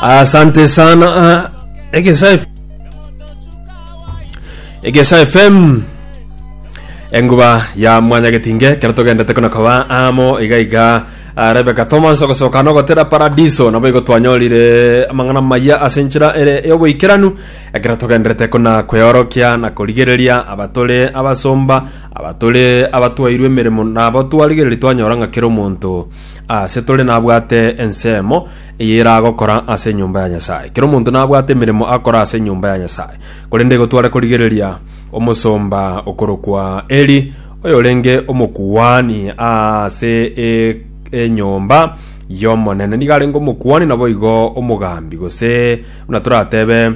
asante sana ah, egesa F- egesa fm enguba ya mwanya getinge kero togendete kuna koba amo iga iga ah, rebeka thomas ogosoka nogotera paradiso nabo igo twanyorire amang'ana maya ase enchera ere eyoboikeranu ekero togenderete kuna kweorokia na korigereria abatore abasomba abatore abatwairwe emeremo nabo twarigereria twanyora ng'a kera omonto Aase tore nabwate ensemo eye eragokora ase enyomba ya Nyasae. Kera omonto nabwate emeremo akora ase enyomba ya Nyasae, korende igo tware korigereria omosomba okorokwa Eli, oyorenge omokuani aase e enyomba y'Omonene. Nigo arenge omokuani naboigo omogambi, gose buna toratebe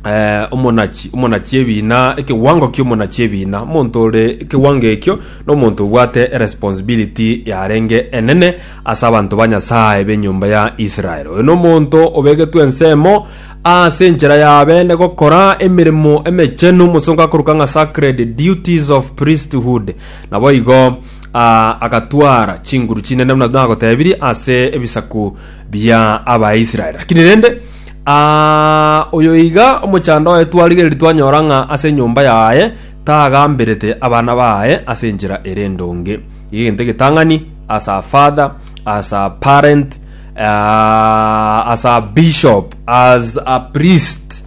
eh, omonachi omonachi ebina ekewango kiomonachi ebina omonto ore ekewango ekio nomonto obwate responsibility yarenge enene ase abanto ba nyasaye benyomba ya israel oyo nomonto obegetwe ensemo ase enchera yabe ne gokora emeremo emechenu mosongo akoruka ng'a sacred duties of priesthood nabo igo ah, agatwara chinguru chinene buna nagotebirie ase ebisaku bia abaisrael lakini rende Ah, oyo iga omochando oye twarigereria twanyora ng'a ase enyomba yaye tagamberete abana baye ase enchera ere endonge. Iga egento egetang'ani as a father, as a parent, uh, as a bishop, as a priest.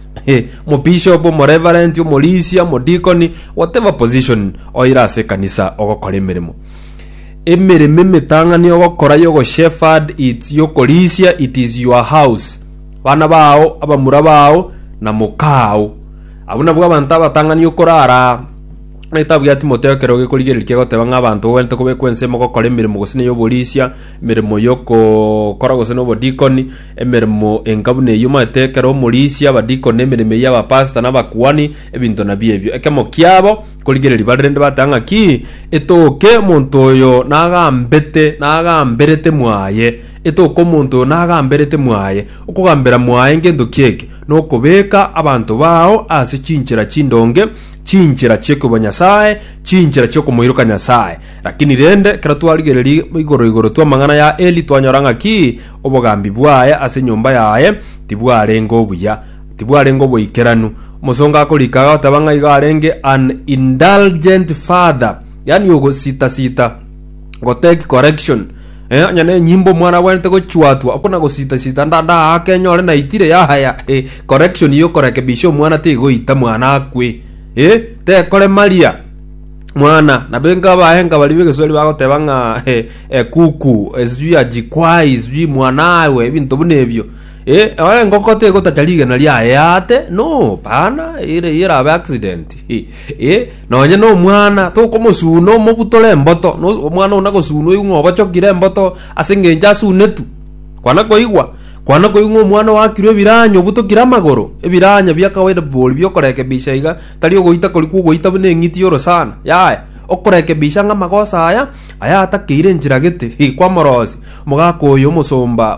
mobishop omoreverent omorisia omodikoni whatever position oira ase ekanisa ogokora emeremo Emeremo emetang'ani ogokora y'ogosheferd its yokorisia it is your house bana bao abamura bao na mokaao abwo nabwo abanto abatang'ani okorara onye tabwati mote ekero gekorigereria kegoteba ng'a abanto ogwenerete kobekwa ensemo gokora emeremo gose na ey'oborisia emeremo yokokora gose na obodikoni emeremo enga buna eywo omanyete ekero omorisia abadikoni emeremo eywo abapastor na abakuani ebinto nabio ebio ekemo kiabo. Korigereria bare rende bateba ng'aki, Etoke omonto oyo nagambete, nagamberete mwaye, etoke omonto oyo nagamberete mwaye. Okogambera mwaye ngento ki eke? Nokobeka abanto bao ase chinchera chindonge, chinchera chi'ekoiboa Nyasae, chinchera chi'okomoiroka Nyasae. Lakini rende, ekero twarigereria igoro igoro tw'amang'ana ya Eli, twanyora ng'aki, obogambi bwaye ase enyomba yaye tibwarenge obuya. Tibwarenge oboikeranu. Omosongo akorika agoteba ng'a igo arenge an indulgent father, yaani ogositasita, gotake correction. Eh, onye na enyimbo omwana abwanete gochuatwa, okona gositasita nda nda ake enyore naitire yahaya. Eh, correction iyo korekebisha omwana tegoita mwana akwe. Eh, tekore maria mwana nabenga abahenga bari begesweri bagoteba ng'a eh, eh, kuku eh, sijui ajikwai sijui mwanawe ebinto buna ebio Eh, eh, engoko tegotacha rigena riaye ate no pana ere yerabe accident eh, eh, nonye no omwana tokomosuna omobutore emboto no omwana ona gosunwa igu ng'obochokire emboto ase engencho asunetu kwana koigwa kwana koigwa ng'a omwana wakirwe ebiranyo obutokire amagoro ebiranya bia kawaida bori biokorekebisha iga tari ogoita kori kwogoita buna eng'iti yoro sana yaya okorekebisha ng'a amagoso aya aya atakeire enchera gete eh, kwamorosi omogaka oyo omosomba